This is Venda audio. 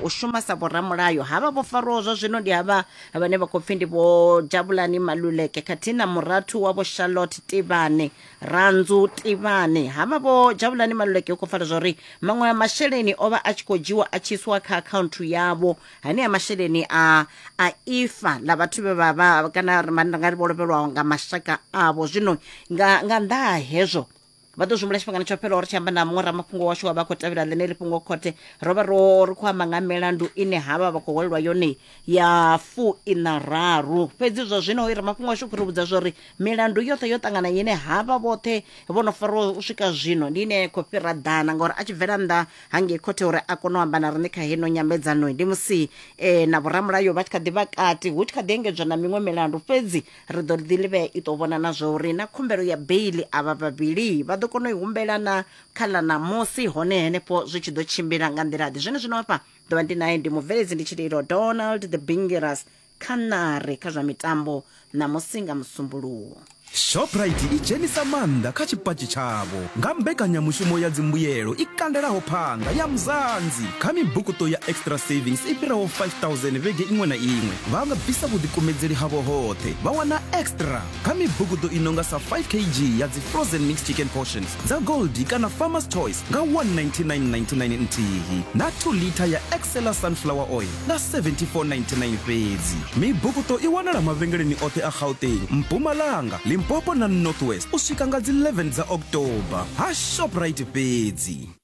u shuma sa vhoramulayo havha vho farwaho zwa zwino ndi havha vhane vha khou pfi ndi vho jabulani maluleke khathihi na murathu wa vho charlotte tivhane ranzu tivhane havha vho jabulani maluleke u khou fara zwa uri maṅwe a masheleni o vha a tshi khou dzhiwa a tshi isiwa kha akhaunthu yavho hanea masheleni a a ifa ḽa vhathu vhe vha vha kana ri nga ri vho lovhelwaho nga mashaka avho zwino nga nga nnḓa ha hezwo vha ḓo zwimbula tshifhingani tsho fhelaho ri tshi amba na muṅwe ramafhungo washu wa vha khou tevhela ḽeneli fhungo khothe ro vha ro ri khou amba nga milandu ine havha vha khou hwalelwa yone ya fu ina raru fhedzi zwa zwino i ramafhungo washu khou ri vhudza zwa uri milandu yoṱhe yo ṱangana ine havha vhoṱhe vho no fariwa u swika zwino ndi ine khou fhira ḓana ngauri a tshi bvela nnḓa hangei khothe uri a kone u amba na riṋe kha heno nyambedzano ndi musi eh, na vhoramulayo vha tshi kha ḓi vha kati hu tshi kha ḓi engedzwa na miṅwe milandu fhedzi ri ḓo ḓi livhea i ḓo vhona na zwa uri na khumbelo ya beili avha vhavhili vha ḓo kona u i humbela na kha ḽa ṋamusi hone henefho zwi tshi ḓo tshimbila nga nḓila-ḓe zwene zwino hafha ḓo vha ndi naye ndi mubveledzi ndi tshililo donald the bingiras kha ṋari kha zwa mitambo ṋamusi nga musumbuluwo Shoprite i dzhenisa maanḓa kha tshipatshi tshavho nga mbekanyamushumo ya dzimbuyelo i kandelaho phanḓa ya Mzansi kha mibukuṱo ya Extra Savings i fhiraho 5000 vhege iṅwe na iṅwe. vha nga bvisa vhuḓikumedzeli havho hoṱhe vha wana extra kha mibugudo i nonga sa 5 kg ya dzi frozen mixed chicken portions dza goldi kana farmers choice nga 19999 nthihi na 2 lita ya excela sunflower oil nga 7499 fhedzi mibugudo i wanala mavhengeleni oṱhe a gauteng mpumalanga limpopo na northwest u swika nga dzi 11 dza october ha shoprite fhedzi